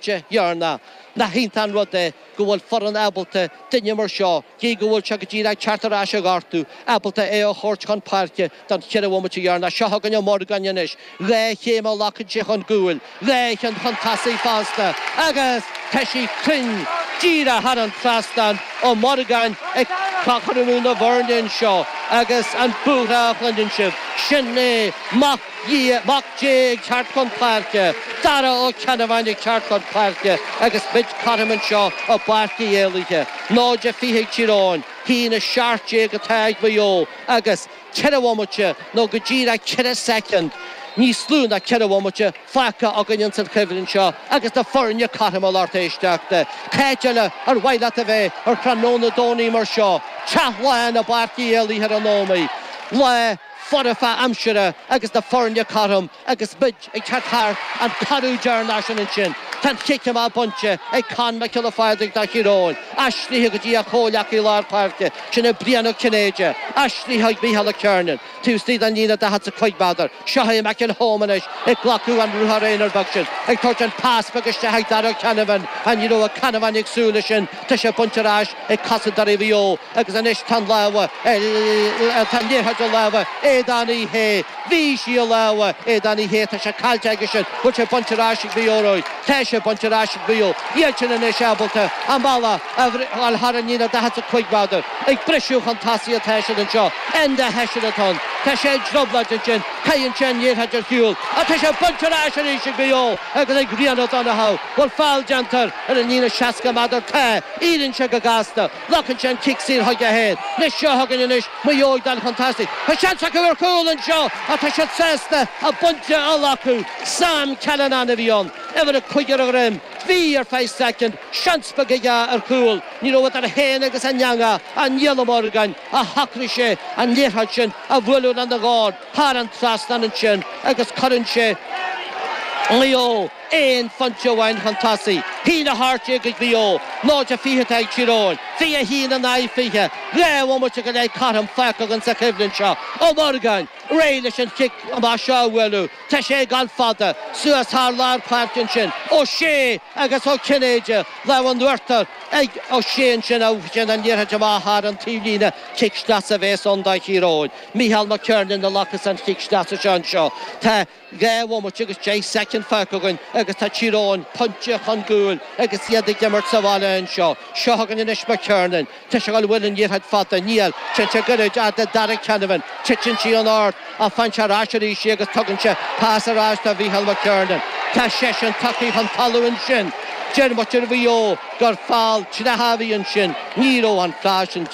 de dhearna. Nach iontach an rud é go bhfuil foireann ábalta duine mar seo, gidh go bhfuil sé go díreach ag teacht ar ais ó ghortú, ábalta é a thabhairt chun páirce don cheithre bhomaite dheireanach. Seo chugainn Ó Morgáin anois. Dhá chéim a ghlacann sé chun gcúil, dhá cheann chun tosaigh fosta agus tá sí cruinn díreach thar an trasnán. Ó Morgáin ag cothromú na bhfoirne anseo agus an búithreadh a chluineann sibh, sin é. Dia, Mac Dé ag teacht chun páirce, Dara Ó Ceannabháin ag teacht chun páirce agus muid cothrom anseo i bPáirc Uí Éalaithe. 0-20 ag Tír Eoghain, 1-17 atá ag Maigh Eo agus ceithre bhomaite nó go díreach ceithre soicind, níos lú ná ceithre bhomaite, fágtha againn ins an choimhlint seo agus na foirne cothrom, a lucht éisteachta. Cá háit eile ar mhaith leat a bheith ar thráthnóna Domhnaigh mar seo? Teach lán i bPáirc Uí Éalaithe ar an Ómaigh. Lá. foirfe aimsire agus na foirne cothrom agus muid ag teacht thart an coradh deireanach sin ansin tá an cic amach bainte ag Conn Mac Giolla Phádraig do Thír Eoghain, aistrithe go dtí a chomhleacaí lár páirce, sin é Brian Ó Cinnéide, aistrithe ag Micheál McKernan, taobh istigh den líne daichead 's a cúig meadar, seo chugainn McElholm anois ag glacadh an ruathar aonair beag sin, ag tabhairt an pas beag isteach ag Darragh Canavan, ní raibh Ó Ceannabháin ag súil leis sin. Tá sé bainte ar ais ag cosantóirí Mhaigh Eo agus anois tá an lámha ar, tá an liathróid i lámha Aodán Uí Shé. Bhí sí i lámha Aodán Uí Shé, tá sé caillte aige sin. Bhfuil sé bainte ar ais ag Maigh Eo romhainn? Tá sé bainte ar ais ag Maigh Eo. Iad sin anois ábalta a mbealach a bhriseadh thar an líne 45 meadar. Ag briseadh chun tosaigh atá siad anseo. Enda Hession atá ann. Tá sé i dtrioblóid ansin. Caitheann sé an liathróid ar chúl. Ach tá sé bainte ar ais arís ag Maigh Eo agus ag Ryan O'Donoghue. Bhfuil feall déanta air? Ar an líne 60 meadar tá, iarrann sé go gasta, glacann sé an cic saor chuige féin, seo chugainn anois Maigh Eo ag dul chun tosaigh. Tá seans acu ar chúl anseo ach tá siad sásta a bpointe a ghlacadh. Sam Callinan a bhí ann, uimhir a cúig ar a dhroim. Bhí, ar feadh soicind, seans beag aige ar chúl. Ní raibh idir é féin agus an eangach ach Niall Ó Morgáin, ach shocraigh sé an liathróid sin a bhualadh lena dhorn thar an trasnán ansin agus cuireann sé Maigh Eo aon phointe amháin chun tosaigh. 1-18 ag Maigh Eo, 0-20 atá ag Tír Eoghain, 21 in aghaidh 20. Dhá bhomaite go leith cothrom fágtha againn sa choimhlint seo. Ó Morgáin réidh leis an chic amach seo a bhualadh. Tá sé ag gabháil fada. Suas thar lár páirce ansin. Ó Sé agus Ó Cinnéide. Lámh in uachtar ag Ó Sé ansin agus ansin an liathróid amach thar an taobhlíne. Cic sleasa a bhéas ann do Thír Eoghain. Micheál McKernan a ghlacas an cic sleasa seo anseo. Tá. Dhá bhomaite agus deich soicind fágtha againn agus tá Tír Eoghain pointe chun cúil agus iad ag imirt sa bhaile anseo. Seo chugainn anois Mac Kernan. Tá sé ag dul, an bhfuil an iarracht fada. Níl. Téann sé gairid fhad le Darragh Canavan. Titeann sí an ord. Ach faigheann sé ar ais arís í agus tugann sé pas ar ais do Mhicheál Mac Kernan. Tá seisean tagtha chun talamh ansin. Deir muintir Mhaigh Eo gur fail dleathach a bhí ansin. Ní raibh an fail sin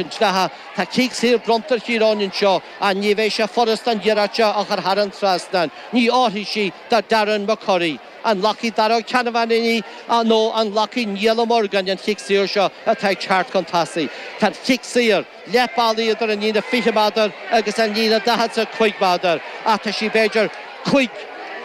dleathach. Tá cic saor bronnta ar Thír Eoghain anseo. Ach ní bheidh sé furast an iarracht seo a chur thar an trasnán, ní oirfidh sí do Darren McCurry. An nglacfaidh Daragh Ó Ceannabháin í nó an nglacfaidh Niall Ó Morgáin an chic saor seo atá ag teacht chun tosaigh? Tá an chic saor, leath bealaigh idir an líne 20 méadar agus an líne 45 méadar ach tá sí b'fhéidir cúig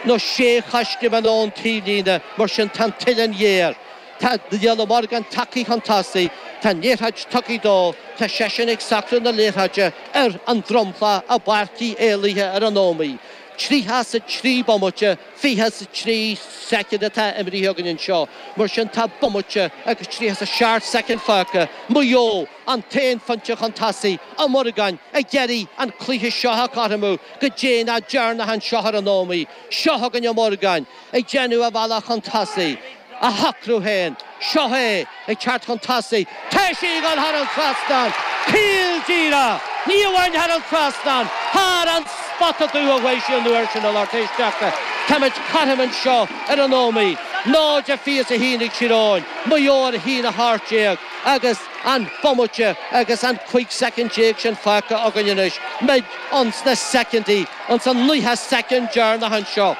nó sé choiscéim ón taobhlíne, mar sin tá an t-uilleann ghéar. Tá Niall Morgan tagtha chun tosaigh, tá an liathróid tugtha dó, tá seisean ag socrú na liathróide ar an dromchla i bPáirc Uí Éalaithe ar an Ómaigh. Tríocha is a trí bomaite, fiche is a trí soicind atá imrithe againn anseo, mar sin tá bomaite agus tríocha is a seacht soicind fágtha. Maigh Eo an t-aon phointe chun tosaigh Ó Morgáin ag iarraidh an cluiche seo a chothromú go déanach deireanach anseo ar an Ómaigh. Seo chugainn Ó Morgáin ag déanamh a bhealach chun tosaigh. á shocrú féin. Seo é ag teacht chun tosaigh, tá sí ag dul thar an trasnán, caol díreach, ní amháin thar an trasnán, thar an spota dubh a chuaigh sí an uair sin a lucht éisteachta. Táimid cothrom anseo ar an Ómaigh, 0 fiche is a haon ag Tír Eoghain, Maigh Eo a haon 18 agus an bomaite agus an 15 soicind sin fágtha againn anois, muid ins na soicindí, ins an naocha soicind deireanach anseo.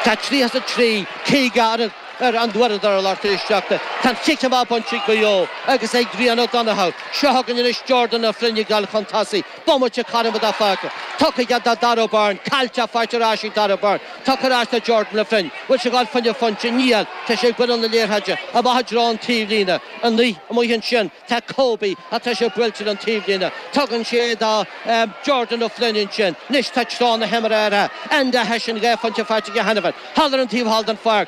Tá 33. Caoga ar an uaireadóir, a lucht éisteachta, tá'n chic amach bainte ag Maigh Eo agus ag Ryan Ó Donnchadha. Seo chugainn anois Jordan Ó Floinn ag dul chun tosaigh, bomaite cothrom atá fágtha tugtha aige do Darragh Beirne, caillte ach faighte ar ais ag Darragh Beirne, tugtha ar ais do Jordan Ó Floinn, bhfuil sé ag dul fá choinne pointe, níl, tá sé ag bualadh na liathróide, amach i dtreo an taobhlíne, amuigh ansin. Tá Kobe, ach tá sé buailte ar an taobhlíne. Tugann sé é do Jordan Ó Floinn ansin. Anois tá treo na himeartha athraithe. Enda Hession dhá phointe faighte aige cheana féin. Thall ar an taobh thall den pháirc.